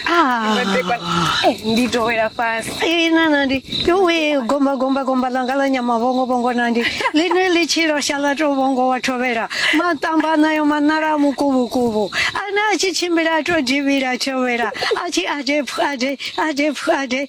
Ah. Eh, ndi to wela fhasi Eh, na nandi yowe gomba gomba gomba langa la nyama vhongo vhongo nandi ḽine ḽi tshi losha ḽa to vhongo wa thovhela maṱamba nayo maṋala a mukuvhukuvhu ane a tshi tshimbila a to divhila thovhela a tshi ade pfu ade ade pfu ade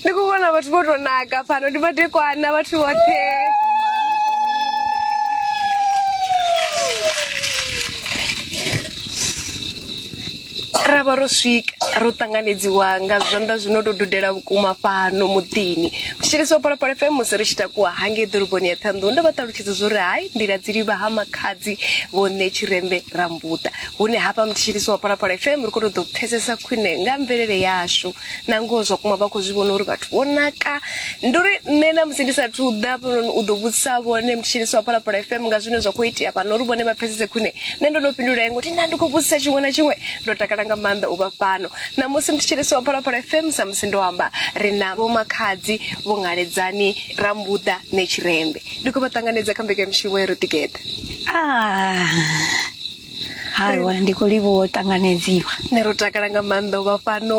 Ndi khou vhona vhathu vho tou naka fhano ndi madekwana vhathu vhoṱhe. ra vha ro swika ro ṱanganedziwa nga zwanḓa zwi no tou dudela vhukuma fhano muḓini thetshelesi wa phalaphala fm musi ri tshi takuwa hangei ḓoroboni ya ṱhanḓou ndo vha ṱalutshedza zwo ri hai nḓila dzi livha ha makhadzi vhone tshirembe rambuḓa hune hafha muthetshelesi wa phalaphala fm ri khou tou ḓo pfesesa khwine nga mvelele yashu na ngoho zwa kuma vha khou zwi vhona uri vhathu vho naka ndi uri nṋe na musi ndi sathu ḓa hafhanoni u ḓo vhudzisa vhone mtshinisi wa phalaphala fm nga zwine zwa khou itea fhano uri vhone vha pfesese khwine nṋe ndo no fhindula yengo ti nda ndi khou vhudzisa tshiṅwe na tshiṅwe ndo takala nga maanḓa u vha fhano na musi mtshinisi wa phalaphala fm sa musi ndo amba ri na vho makhadzi vho ngaledzani rambuḓa ne tshirembe ndi khou vha ṱanganedza kha mbekanyamushumo ya ro ḓigeḓa ah. Hawa ndi khou livhuwa u ṱanganedziwa. Nṋe ro takala nga maanḓa u vha fhano.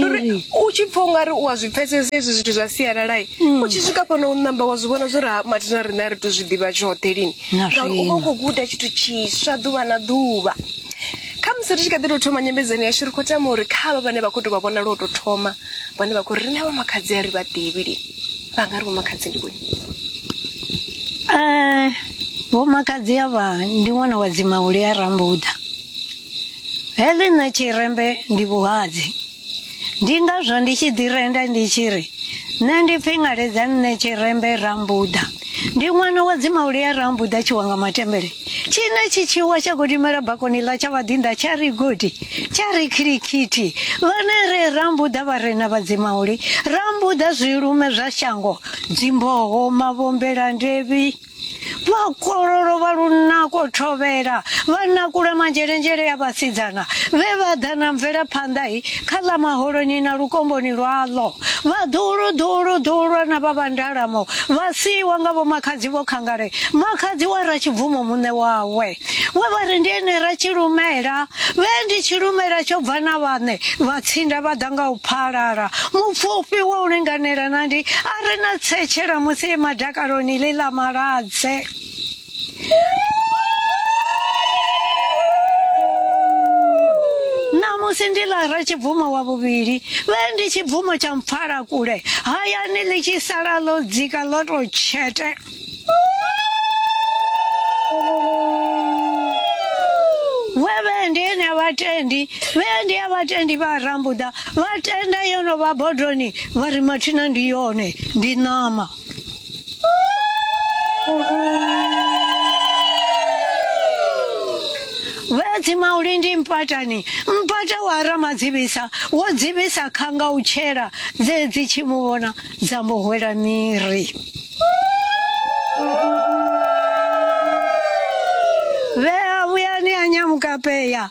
Uri u tshi pfha ungari u a zwi pfhesesa hezwi zwithu zwa sialala mm. u tshi swika fhano u namba wa zwi vhona zwo ri ha mathina riṋe a ri to zwi ḓivha tshoṱhe lini ngauri u vha u khou guda tshithu tshiswa ḓuvha na ḓuvha kha musi ri tshi kha ḓi tou thoma nyambedzano yashu ri khou tama uri kha vha vhane vha khou tou vha vhona lwo tou thoma vhone vha khou ri na vhomakhadzi a ri vha ḓivhi li vha nga ri vhomakhadzi ndi vhone Eh, vhomakadzi avha ndi ṅwana wa dzimauli a rambuḓa heḽi nṋe tshirembe ndi vhuhadzi ndi ngazwo ndi tshi ḓi renda ndi tshi ri nṋe ndi pfi ngaledza nṋe tshirembe rambuḓa Ndi ṅwana wa dzimauli a ra mbuḓa tshiwa nga matembele tshine tshi tshiwa tsha godimela bakoni ḽa tsha vhaḓinḓa tsha ri godi tsha ri khirikhithi vhane re ra mbuḓa vharena vha dzimauli ra mbuḓa zwilume zwa shango dzimboho mavhombela ndevhi vhakololo vha lunako thovhela vha nakula manzhelendzhele ya vhasidzana vhe vha ḓa na mvelaphanḓa kha ḽa maholoni na lukomboni lwaḽo, vhaḓuhulu ḓuhulu ḓuhulwa na vha vhandalamo vha siiwa nga vhomakhadzi vho khangale, makhadzi wa Ratshibvumo muṋe wawe, we vha ri ndi ene Ratshilumela, vhe ndi tshilumela tsho bva na vhaṋe vha tsinda vha ḓa nga u phalala, mupfufhi wa u linganela na ndi a re na tsetshela musi e madakaloni ḽi ḽa maladze. ṋamusi ndi lara tshibvumo wa vhuvhili vhe ndi tshibvumo tsha mpfala kule hayani ḽi tshi sala ḽo dzika ḽo tou tshete vhendi ene a vhatendi vhendi a vhatendi vha rambuḓa vha tenda yo no vha bodoni vha ri mathina ndi yone ndi ṋama vhedzi maulindi mpatani mpata wa ramadzivhisa wo dzivhisa khanga u tshela dze dzi tshi mu vhona dza mu hwela miri vhea vhuyani ya nyamukapeya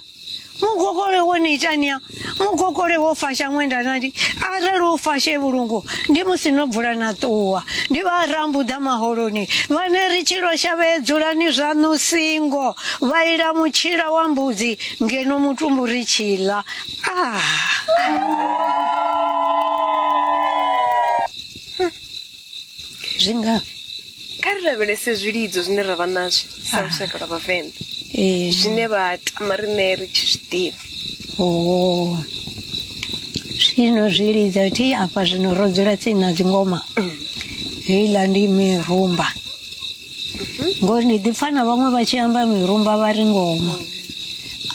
mugokole wo ni itania mugokole wo fasha ṅwenda nati arali wo fashe vhulungu ndi musi no bvula na ṱuwa ndi vha rambuḓa maholoni vhane ri tshilo shavhee dzulani zwaṋu singo vha ila mutshila wa mbudzi ngeno mutumbu ri tshiḽa ah. zwi ngafhi kha ri lavhelese zwilidzo zwine ra vha nazwo sa Ah. lushaka lwa vhavenḓa ee zwine vha tama riṋe ri tshi zwi ḓivha oo zwino zwi lidza thi afha zwino ro dzula tsini na dzingoma heiḽa ndi mirumba ngori ndi ḓipfa na vhaṅwe vha tshi amba mirumba vha ri ngoma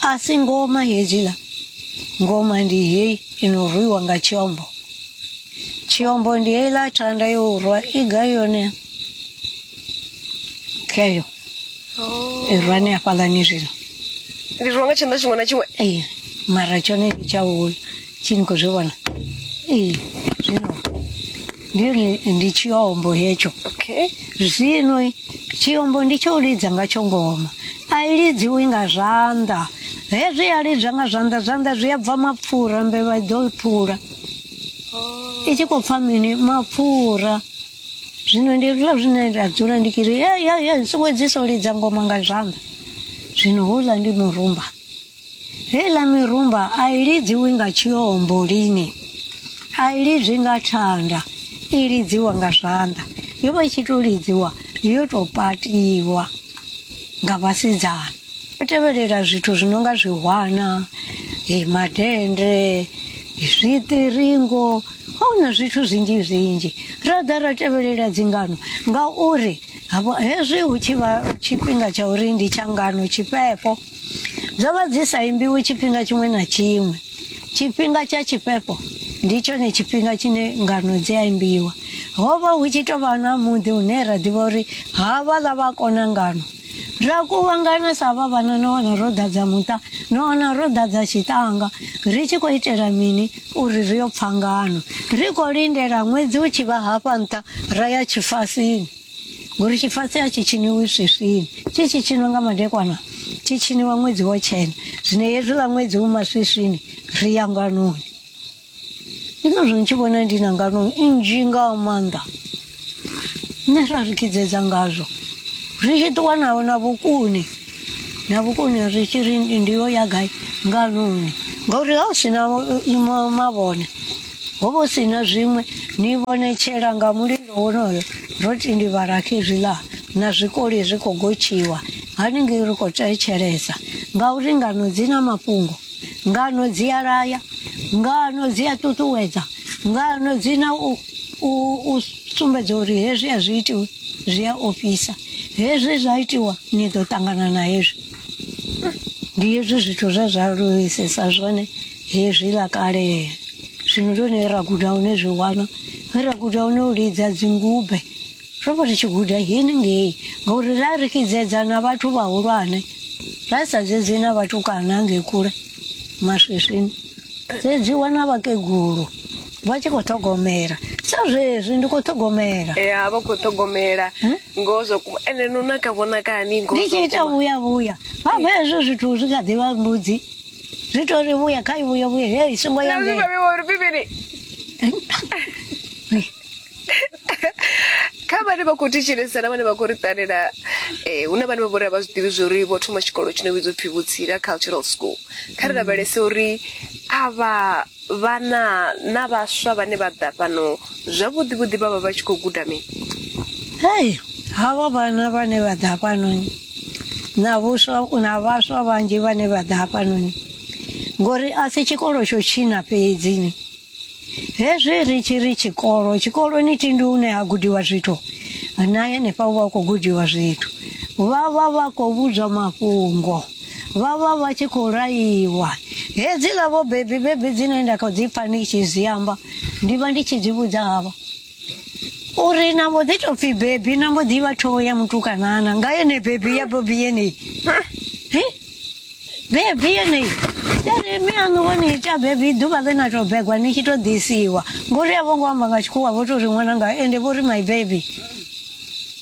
a si ngoma hedziḽa ngoma ndi heyi ino rwiwa nga tshiombo chiyombo ndiye ila thanda yorwa iga yone keyo irwa ni afhala ni zvino ndi rwa nga tshanḓa tshiṅwe na tshiṅwe ee mara tshone ndi tshaulu tshini khou zwi vhona ee zwino ndiyo ni- ndi tshiombo hetsho okay zvinoi chiyombo ndicho ulidza ngacho ngoma ailidziwi nga zvanḓa hezwi yalidzwa nga zwanḓa zwanḓa zwi a bva mapfura mbevha i ḓo phula i tshi khou pfa mini mapfura zwino ndi hezwiḽa zwine nda dzula ndi kiri ya ya ya songo dziso lidza ngoma nga zwanḓa zwino houḽa ndi murumba Heiḽa mirumba a i lidziwi nga tshiombo lini, a i lidzwi nga thanda, i lidziwa nga zwanḓa. Yo vha i tshi tou lidziwa yo tou patiwa nga vhasidzana. Yo tevhelela zwithu zwi no nga zwihwana, eh, madennde, zwiṱiringo, ho na zwithu zwinzhi zwinzhi. Ra ḓa ra tevhelela dzingano ngauri havho hezwi hu tshi vha tshifhinga tsha uri ndi tshangano tshifhefho. Dzo vha dzi sa imbiwi tshifhinga tshiṅwe na tshiṅwe. Tshifhinga tsha tshifhefho ndi tshone tshifhinga tshine ngano dzi a imbiwa. Ho vha hu tshi tou vha na muḓi hune ra ḓivha uri havhaḽa vha kona ngano. Ra kuvhangana sa vha vhana no wana ro ḓadza muṱa, no wana ro ḓadza tshiṱanga. Ri tshi khou itela mini? Uri ri yo pfa ngano. Ri khou lindela ṅwedzi u tshi vha hafha nṱha ra ya tshifasini. ngori tshifase a tshi tshiniwi swiswini tshi tshi tshinwa nga madekwana tshi tshiniwa ṅwedzi wo tshena zwino hezwiḽa ṅwedzi u maswiswini ri ya nganoni ndi ngazwo ni tshi vhona ndi na nganoni nnzhi nga maanḓa nṋe ra ri kidzedza ngazwo ri tshi ṱuwa nawo na vhukuni na vhukuni ri tshi ri ndi yo ya gai nganoni ngauri ha u sina mavhone ho vho si na zwiṅwe ni vhonetshela nga mulilo wonoyo ro tindivhala khezwiḽa na zwikoli zwi khou gotshiwa haningei ri khou thetshelesa ngauri ngano dzi na mafhungo ngano dzi a laya ngano dzi a ṱuṱuwedza ngano dzi na u, u, u sumbedza uri hezwi a zwi itiwi zwi a ofhisa hezwi zwa itiwa ni ḓo ṱangana na hezwi ndi hezwi zwithu zwe zwa lulisesa zwone hezwi ḽa kalea zwino ndi hone ra guda hune zwi wana he ra guda hune u lidza dzingube ro vha ri tshi guda hini ngei ngauri ra ri kidzedza na vhathu vhahulwane ra sa dzedzi na vhatukana ngei kule maswiswini dzedziwa na vhakegulu vha tshi khou ṱhogomela sa zwezwi ndi khou ṱhogomela ya vha khou ṱhogomela ngoho zwa kuma ende no naka vhonakani ngoho ndi tshi zwa ita kuma. vhuya vhuya vha vha hezwo zwithu zwi kha ḓivha mbudzi Zwi to ri vhuya kha i vhuye vhuye he i songo ya ngei. kha vhane vha khou thetshelesa na vhane vha khou ri ṱalela um hu na vhane vha vhori a vha zwi ḓivhi zwa uri vho thoma tshikolo tshi no vhidzwa upfhi vhutsila cultural school kha ri mm. lavhelese uri avha vhana na vhaswa vhane vha ḓa fhano zwavhuḓi vhuḓi vha vha vha tshi khou guda mini hei havha vhana vhane vha ḓa fhanoni na vhuswa na vhaswa vhanzhi vhane vha ḓa hafhanoni ngori a si tshikolo tsho tshina fhedzini hezwi ri tshi ri tshikolo tshikoloni tindi une ha gudiwa zwithu na henefha u vha u khou gudiwa zwithu vha vha vha khou vhudzwa mafhungo vha vha vha tshi khou laiwa hedziḽa vho bebi bebi dzine nda kha dzi pfa ndi tshi zwi amba ndi vha ndi tshi dzi vhudza havha uri na mbo ḓi tou pfhi bebi na mbo ḓivha thoho ya mutukanana nga yene bebi ya bobi yeneyi Hi? bebi yeneyi yari mi aṋu vho ni ita bebi ḓuvha ḽe na tou begwa ni tshi tou ḓisiwa ngori a vho ngo amba nga tshikhuwa vho tou ri ṅwananga ende vho ri my baby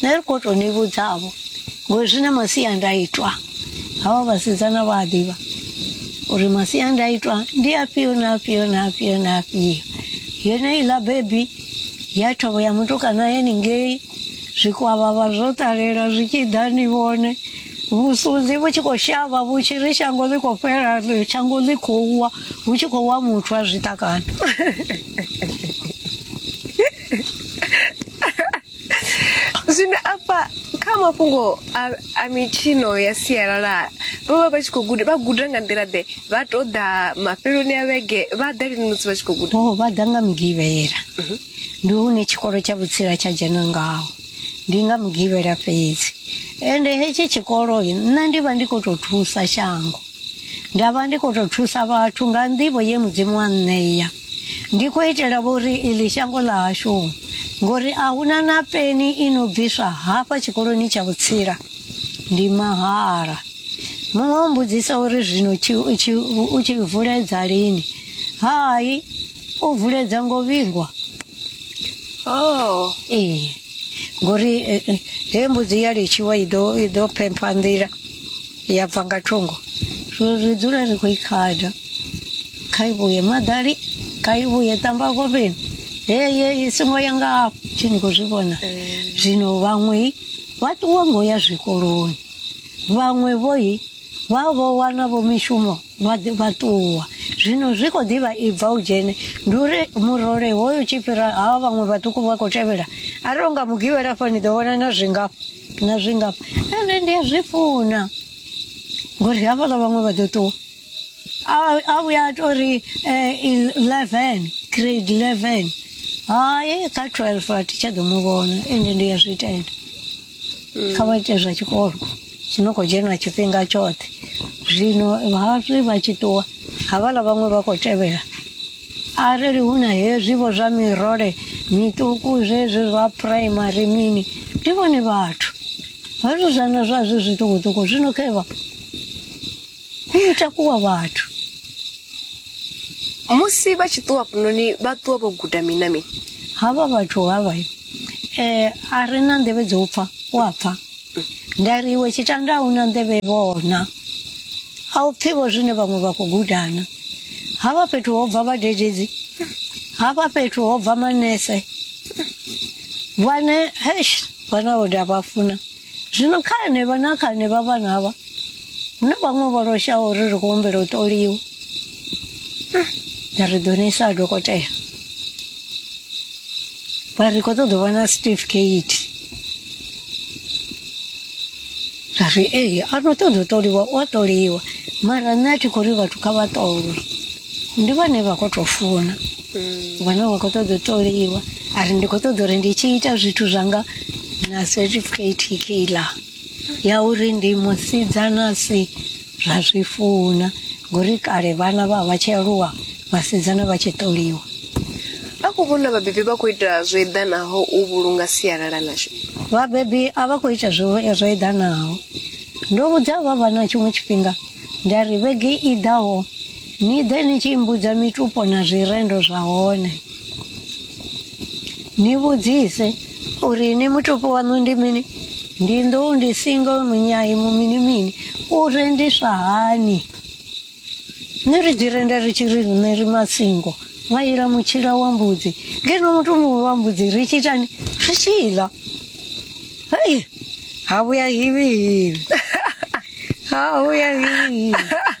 nṋe ri khou tou ni vhudzavho ngori zwi na masiandaitwa havha vhasidzana vha a ḓivha uri masiandaitwa ndi afhio na afhio na afhio na afhio yone iḽa bebi ya thovho ya mutukana heningei zwikwavhavha zwo ṱalela zwi tshi ḓa ni vhone vhusunzi vhu tshi khou shavha vhu tshi ri shango ḽi khou fhela shango ḽi khou wa hu tshi khou wa muthu a zwiṱakana zwino afha kha mafhungo a, a mitshino ya sialala vho vha vha tshi khou guda vha guda nga nḓila ḓe vha tou ḓa mafheloni a vhege vha ḓa lini musi vha tshi khou guda o vha ḓa nga mugivhela ndi hune tshikolo tsha vhutsila tsha dzhena ngaho ndi nga mugivhela fhedzi ende hetshi tshikolo nṋe ndi vha ndi khou tou thusa shango nda vha ndi khou tou thusa vhathu nga nḓivho ye mudzimu wa nṋeya ndi khou itela vhori iḽi shango ḽa hashu ngori a huna na peni i no bviswa hafha tshikoloni tsha vhutsila ndi mahala muṅwe o mbudzisa uri zwino u tshi vuledza lini hai u vuledza ngo vhingwa oh ee ngori eh, eh, he mbudzi ya litshiwa i ḓo i ḓo phempha nḓila yabva nga thungo zwo ri dzula ri khou i khada kha i vhuye maḓali kha i vhuye tamba kovheni heye i songo ya nga afho thi ni khou zwi vhona zwino vhaṅwe vha ṱuwa ngo ya zwikoloni vhaṅwe vhoi vha vho wana vho mishumo vha vha ṱuwa zwino zwi khou ḓivha i bva u dzhene ndi uri murole hoyo tshi fhira hawa vhaṅwe vhaṱuku vha khou tevhela a ri unga mugivhela fha ni ḓo vhona na zwingafha na zwingafha ende ndi a zwi funa ngori hafhaḽa vhaṅwe vha ḓo ṱuwa a vhuya a tori eleven grade eleven hai kha twelve a thi tsha ḓo mu vhona ende ndi a zwi tenda kha vha ite zwa tshikolo tshi no khou dzhena tshifhinga tshoṱhe zwino hazwi vha tshi ṱuwa havhala vhaṅwe vha khou tevhela arali hu na hezwivo zwa mirole miṱuku zwezwi zwa phuraimari mini ndi vhone vhathu vhathu zwana zwazwi zwiṱukuṱuku zwino khevha hu no takuwa vhathu musi vha tshi ṱuwa fhanoni vha ṱuwa vho guda mini na mini havha vhathu havha eh a ri na nḓevhe dzo pfa wa pfa nda ri iwe tshitanda a una nḓevhe vhona a u pfivho zwine vhaṅwe vha khou gudana havha fhethu ho bva vhadededzi havha fhethu ho bva manese vhane hesh vhana vho nda vha funa zwino kha henevha na kha henevha vhana havha hu na vhaṅwe vho loshaho uri ri khou humbela u ṱoliwa ri ḓo ni isa dokotela vha ri khou ṱoḓa u vha na certificate ra ri ee a no ṱoḓa u ṱoliwa u a ṱoliwa mara nṋe a thi khou ri vhathu kha vha ṱolwe ndi vhane vha khou tou funa wana wa khou ṱoḓa u ṱoliwa a ri ndi khou ṱoḓa uri ndi tshi ita zwithu zwanga na certificate keiḽa ya uri ndi musidzana si zwa zwi funa ngori kale vhana vha vha tshi aluwa vhasidzana vha tshi ṱoliwa a khou vhona vhabebi vha khou ita zwo eḓanaho u vhulunga sialala ḽashu vhabebi a vha khou ita zwo zwo eḓanaho ndo vhudza vha vha na tshiṅwe tshifhinga nda ri vhege i ḓaho ni ḓe ni tshi mbudza mitupo na zwirendo zwa hone ni vhudzise uri ni mutupo waṋu ndi mini ndi nḓou ndi singo munyai mu mini mini u rendiswa hani nṋe ri dzi renda ri tshi ri riṋe ri masingo nga ila mutshila wa mbudzi ngeno muthu muṅwe wa mbudzi ri tshi itani ri tshi ḽa hei ha vhuya hivhi hivhi ha vhuya hivhi hivhi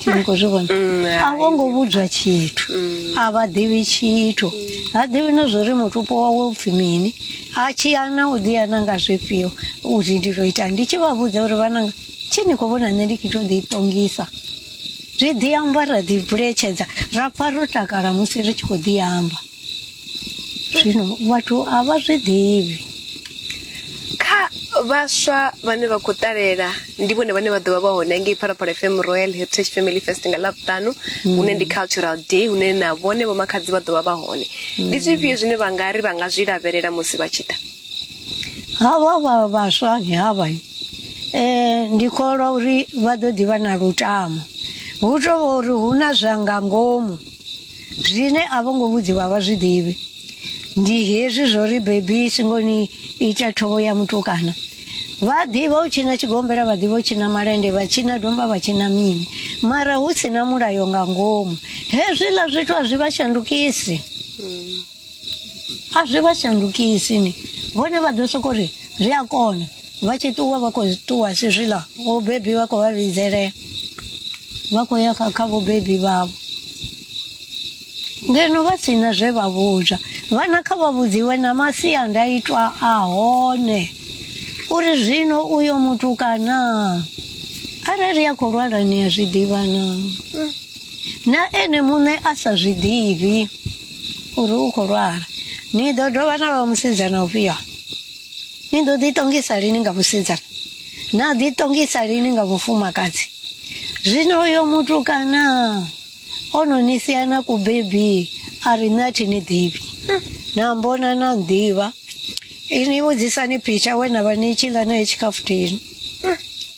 Thi ngo zwi vhona Mm, a vho ngo vhudzwa tshithu a vha ḓivhi tshithu ha ḓivhi na zwo ri mutupo wawe u pfhi mini a tshi ana u ḓi ana nga zwifhio uri ndi tou ita ndi tshi vha vhudza uri vhananga tshi ni khou vhona nṋe ndi kho tou ḓi tongisa zwi ḓi amba ra ḓi buletshedza ra pfa ro takala musi ri tshi khou ḓi amba zwino vhathu a vha zwi ḓivhi kha vhaswa vhane vha khou ṱalela ndi vhone vhane vha ḓovha vha hone ngei phalaphala fm royal heritage family fest nga ḽavhuṱanu mm. hune ndi cultural day hune na vhone vho makhadzi vha ḓovha vha hone mm. ndi zwifhio zwine vha nga ri vha nga zwi lavhelela musi vha tshi ḓa havha vha vhaswa ni havha um eh, ndi kholwa uri vha ḓo ḓivha na lutamo hu tovha uri hu na zwa nga ngomu zwine a vho ngo vhudziwa vha zwi ḓivhi ndi hezwi zwo ri bebi singoni ita thovho ya mutukana vha ḓivha u tshina tshigombela vha ḓivha u tshina malende vha tshina domba vha tshina mini mara hu si na mulayo nga ngomu hezwiḽa zwithu a zwi vha shandukisi a zwi vha shandukisi ni vhone vha ḓo soko ri zwi a kona vha tshi ṱuwa vha khou ṱuwa si zwiḽa vhobebi vha khou vha vhidzelea vha khou ya kha vhobebi vhavho ngeno vha si na zwe vha vhudzwa vhana kha vha vhudziwe na masiandaitwa a hone uri zwino uyo mutukana arali a khou lwala ni a zwi ḓivha naa na ene muṋe a sa zwi ḓivhi uri u khou lwala ni ḓo dovha na vha musidzana ufhio ni ḓo ḓiṱongisa lini nga musidzana na ḓiṱongisa lini nga mufumakadzi zwino uyo mutukana o no ni sia na kubebi a ri nṋe a thi ni ḓivhi na mbona na ḓivha ini vhudzisani phitsha we na vha ni tshi ḽa nae tshikhafuthini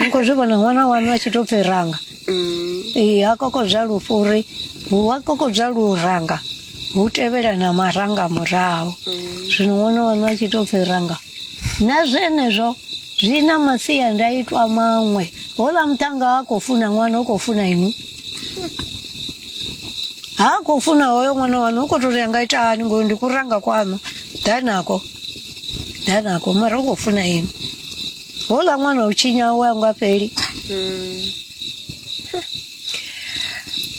ni khou zwi vhona ṅwana wanu a tshi tou pfi ranga ee ha kokodzwa lufu uri hu a kokodzwa luranga hu tevhela na maranga murahu zwino ṅwana wanu a tshi tou pfi ranga na zwenezwo zwi na masiandaitwa maṅwe hola muṱhanga ha khou funa ṅwana u khou funa inwi ha khou funa hoyo ṅwana wanu u khou tou ri anga ita hani ngori ndi kuranga kwanu ḓa nako ḓa nako mara u khou funa inwi Hola mwana uchinya wangu apeli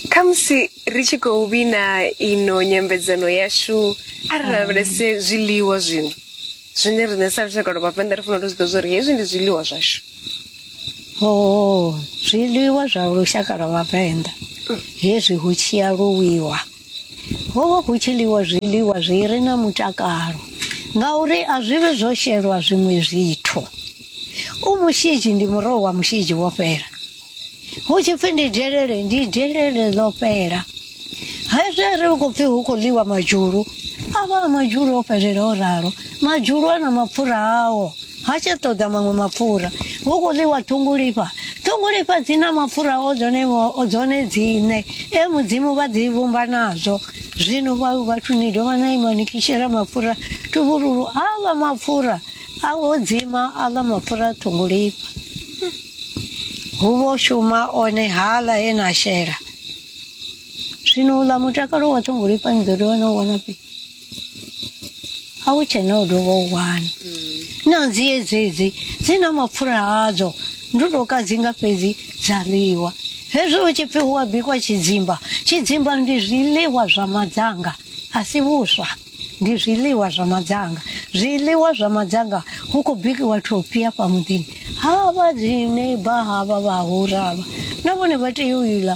khamusi ri tshi khou vhina ino nyambedzano yashu a ri lavhelese zwiḽiwa zwino zwine riṋe sa lushaka lwa vhavenḓa ri fanela u zwi ḓo zwa uri hezwi ndi zwiḽiwa zwashu o zwiḽiwa zwa lushaka lwa vhavenḓa hezwi hu tshi aluwiwa Ho vha hu tshi ḽiwa zwiḽiwa zwi re na mutakalo ngauri a zwi vhe zwo shelwa zwiṅwe zwithu. U mushidzi ndi muroho wa mushidzi wo fhela. Hu tshi pfi ndi delele ndi delele ḽo fhela. Hezwi a ri khou pfi hu khou ḽiwa madzhulu a vha a madzhulu o fhelela o ralo. Madzhulu a na mapfura ao. ha tsha ṱoḓa maṅwe mapfura hu khou ḽiwa ṱhungulifha ṱhungulifha dzi na mapfura o dzone o dzone dzine e mudzimu vha dzi vhumba nazwo zwino vha vhathu ni dovha na ima ni kishela mapfura tuvhululu aḽa mapfura a o dzima aḽa mapfura ṱhungulifha hu vho shuma one haḽa he na shela zwino uḽa mutakalo wa ṱhungulifha ni ḓo dovha na u wana fhii a hu tshe na u dovha u wana na dzi dzedzi dzi na mapfura hadzo ndo tou kadzinga fhedzi dza ḽiwa hezwi hu tshi pfi hu a bikwa tshidzimba tshidzimba ndi zwiḽiwa zwa madzanga a si vhuswa ndi zwiḽiwa zwa madzanga zwiḽiwa zwa madzanga hu khou bikiwa thophi afha muḓini havha dzi neiba havha vhahura havha na vhone vha tea u iḽa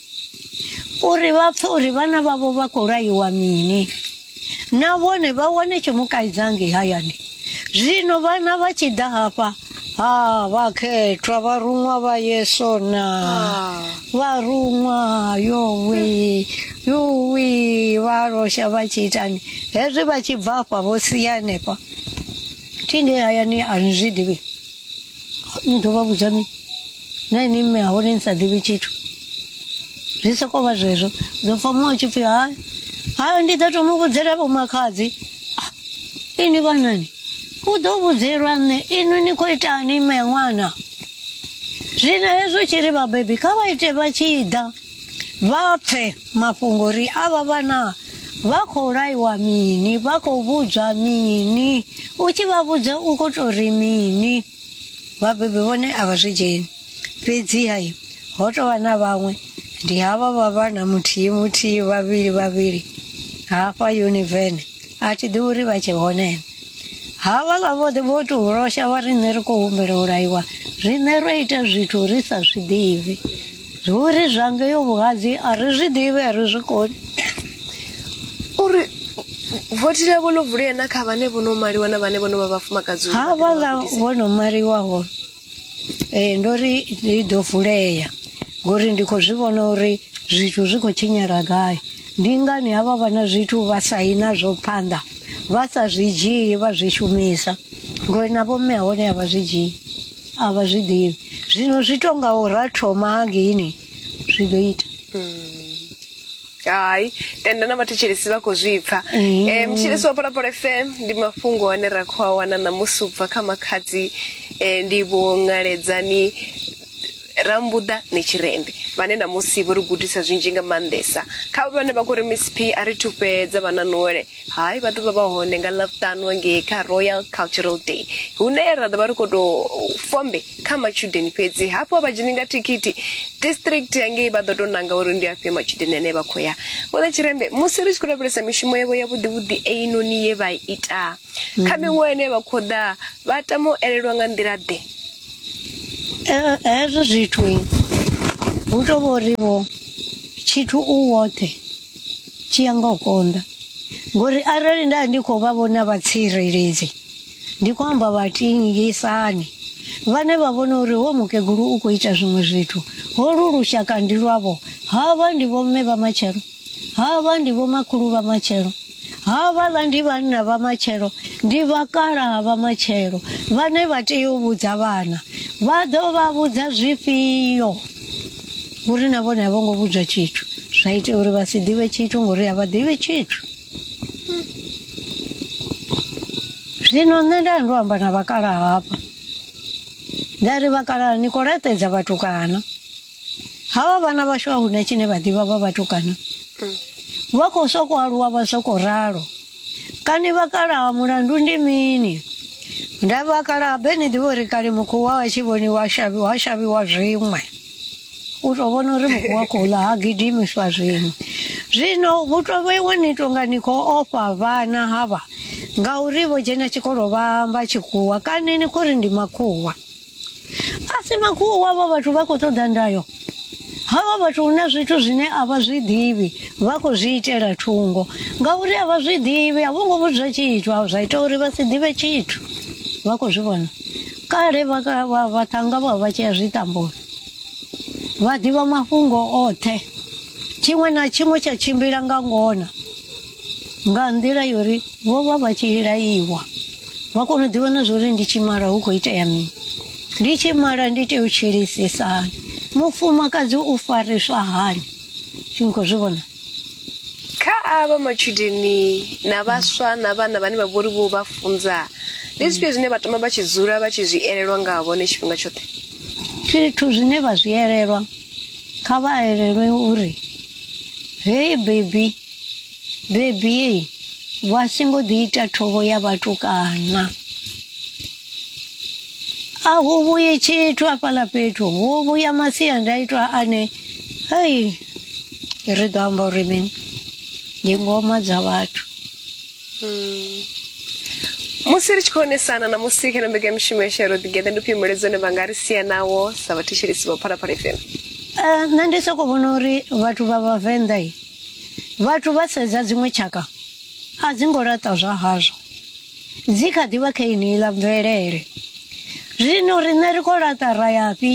uri vha pfe uri vhana vhavho vha khou laiwa mini na vhone vha wane tshimukaidzha ngei hayani zwino vhana vha tshi ḓa hafha ha vhakhethwa vharuṅwa vha yeso na ah. vharuṅwa yowi yowi vha losha vha tshi itani hezwi vha tshi bva afha vho sia hanefha thi ngei hayani a ni zwi ḓivhi ndo vha vhudza mini na ini mme ha hone ni sa ḓivhi tshithu zwi sokou vha zwezwo dzo pfa muṅwe tshi pfhi hai hai ndi ḓo to mu vhudzela vho makhadzi Ah, ini vhanani u ḓo vhudzelwa nṋe inwi ni khou itani mme ṅwana zwino hezwo tshi ri vhabebi kha vha ite vha tshi ḓa Vha pfe mafhungo uri avha vhana vha khou laiwa mini, vha khou vhudzwa mini, u tshi vha vhudza u khou tou ri mini. Vhabebi vhone a vha zwi dzheni. Fhedziha ho tou vha na vhaṅwe, ndi havha vha vhana muthihi muthihi, vhavhili vhavhili hafha Univene, a thi ḓivhi uri vha tshe hone na. Havhaḽa vhoṱhe vho tou losha vha ri nṋe ri khou humbela u laiwa, riṋe ro ita zwithu ri sa zwi ḓivhi. Zwo ri zwa ngeyo vhuhadzi a ri zwi ḓivhi a ri zwi koni uri vothi ḽavho ḽo vulea na kha vhane vho no maliwa na vhane vho no vha vhafumakadzi uri ha vha ḓe vha vhaḽa gudise. vho no maliwaho ee ndo ri i ḓo vulea ngori ndi khou zwi vhona uri zwithu zwi khou tshinyala gai ndi ngani havha vha na zwithu vha saina zwo phanḓa vha sa zwi dzhii vha zwi shumisa ngori na vhomme hone a vha zwi dzhii a vha zwi ḓivhi zwino zwi to nga u ra thoma hangeini zwi ḓo ita hai tenda na vhathetshelesi vha khou zwi pfa Mm. um mutshilisi wa polapolo fm ndi mafhungo ane ra khou a wana ṋamusi u bva kha makhadzi um ndi vho ṅaledzani rambuḓa netshirende vhane ṋamusi vho ri gudisa zwinzhi nga maanḓesa kha vhane vha khou ri miss p a ri thufhedza vha na nole Hai, vha ḓo vha vha hone nga Ḽavhutanu ngei kha Royal Cultural Day hune ra ḓo vha ri khou tou fombe kha matshudeni fhedzi. Hafhu a vha dzheni nga thikhithi. District ya ngei vha ḓo tou nanga uri ndi afhio matshudeni ane vha khou ya. Vho ḽa Tshirembe musi ri tshi khou lavhelesa mishumo yavho ya vhuḓivhuḓi einoni ye vha ita kha mm. miṅwaha ine vha khou ḓa, vha tama u elelwa nga nḓila ḓe. Eh, hezwo zwithu hu tou vho ri vho tshithu u woṱhe. tshi ya nga u konḓa ngori arali nda ndi khou vha vhona vhatsireledzi ndi khou amba vhatingisani vhane vha vhona uri ho mukegulu u khou ita zwiṅwe zwithu holu lushaka ndi lwavho havha ndi vhomme vha matshelo havha ndi vhomakhulu vha matshelo havhaḽa ndi vhanna vha matshelo ndi vhakalaha vha matshelo vhane vha tea u vhudza vhana vha ḓo vha vhudza zwifhio uri na vhone a vho ngo vhudzwa tshithu zwa ita uri vha si ḓivhe tshithu ngori a vha ḓivhe tshithu zwino nṋe nda ndo amba na vhakalaha hafha nda ri vhakalaha ni khou laṱedza vhatukana havha vhana vhashu a huna tshine vha ḓivha vha vhatukana vha khou sokou aluwa vha sokou ralo Kani vakalaha mulandu ndi mini? Nda vakalaha be ni ḓivha uri kale mukuwa wa tshi vhoniwa shavhi wa shavhiwa zwiṅwe u tou vhona uri mukuwa khou ḽa ha gidimiswa zwiṅwe zwino hu tou vheiwe ni tonga ni khou ofha vhana havha ngauri vho dzhena tshikolo vha amba tshikhuwa kani ni khou ri ndi makhuwa asi makhuwa wavho vhathu vha khou ṱoḓa ndayo havha vhathu hu na zwithu zwine a vha zwi ḓivhi vha khou zwi itela thungo ngauri a vha zwi ḓivhi a vho ngo vhudzwa tshithu a zwa ita uri vha si ḓivhe tshithu vha khou zwi vhona kale vhaṱhanga vha vha tshea zwiṱamboni vha ḓivha mafhungo oṱhe tshiṅwe na tshiṅwe tsha tshimbila nga ngona nga nḓila yo ri vho vha vha tshi laiwa vha kona u ḓivha na zwo ri ndi tshi mala hu khou itea mini ndi tshi mala ndi tea u tshilisisa hani mufumakadzi u fariswa hani tshi ni khou zwi vhona kha avha matshudeni na vhaswa na vhana vhane vha vhori vho vha funza ndi zwifhio zwine vha tama vha tshi dzula vha tshi zwi elelwa nga vhone tshifhinga tshoṱhe zwithu zwine vha zwi elelwa kha vha elelwe uri hei bebi Bebi, vha si ngo ḓi ita thovho ya vhatukana. A hu vhuyi tshithu afhaḽa fhethu, hu vhuya masiandaitwa ane hei ri ḓo amba uri mini ndi ngoma dza vhathu. musi ri tshi khou onesana na musi kha mbekanyamushumo ya shero ḓigeḓa ndi ufhio mulaedza une vha nga ri sia nawo sa vhathetshelesi vha phalaphala fm Eh, nṋe ndi soko vhona uri vhathu vha vhavenḓa Vhathu vha sedza dziṅwe tshaka a dzi ngo laṱa zwa hazwo dzi kha ḓi vha kha yeneiḽa mvelele zwino riṋe ri khou laṱa ra yafhi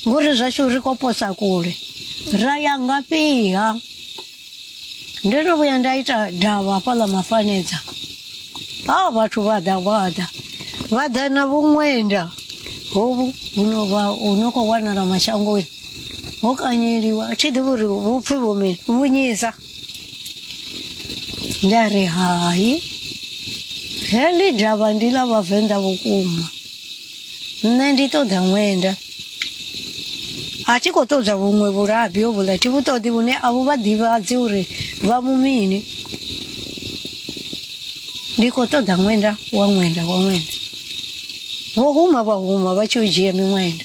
ngori zwashu ri khou posa kule ra ya ngafhiha ndo no vhuya nda ita davha hafhaḽa mafanedza ha vhathu vha ḓa vha ḓa vha ḓa na vhuṅwenda hovhu huno vha hu no khou wanala mashangoni Mok anyeri wa chi de bur bu phe bu me bu ni sa. Nda re hai. Heli drava ndi la vhavenḓa vhukuma. Nṋe ndi ṱoḓa ṅwenda. A thi khou ṱoḓa vhuṅwe vhulabi ho vhula thi vhu ṱoḓi vhune a vhu vha ḓivhadzi uri vha mu mini. Ndi khou ṱoḓa ṅwenda wa ṅwenda wa ṅwenda. Vho huma vha huma vha tshi u dzhia miṅwenda.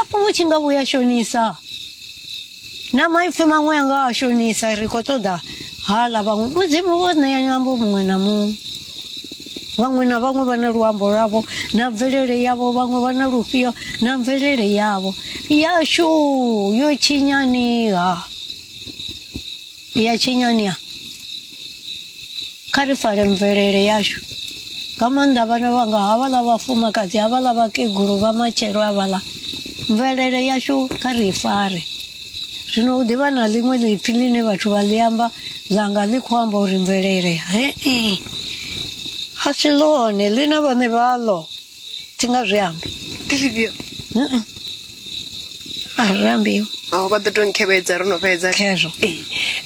apo vhu tshi nga vhuya shonisa na maipfi maṅwe a nga a shonisa ri khou ṱoḓa hala vhaṅwe mudzimu wo ṋea nyambo muṅwe na muṅwe vhaṅwe na vhaṅwe vha na luambo lwavho na mvelele yavho vhaṅwe vha na lufhio na mvelele yavho yashu yo tshinyaniha ya tshinyanya kha ri fare mvelele yashu nga maanḓa vhana vhanga havhaḽa vhafumakadzi havhaḽa vhakegulu vha matshelo havhaḽa mvelele yashu kha ri fare zwino u ḓivha na ḽiṅwe ḽipfi ḽine vhathu vha ḽi amba ḽanga ḽi khou amba uri mvelele hee a si ḽone ḽi na vhaṋe vhaḽo thi nga zwi ambi ndi zwifhio a ri ambiwi aho vha ḓo to nkhevhedza ro no fhedza khezwo Ee,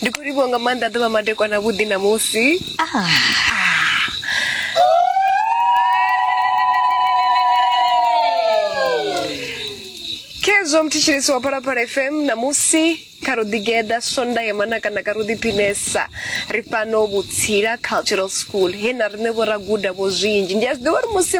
ndi khou livhiwa nga maanḓa ḓuvha madekwana vhuḓi ṋamusi khezwo mthetshelesi wa phalaphala fm ṋamusi kha ro ḓigeḓa sonda ya manakanaka ro ḓiphinesa ri fhano vhutsila cultural school he na riṋe vho ra guda vho zwinzhi ndi a zwi ḓivha uri musi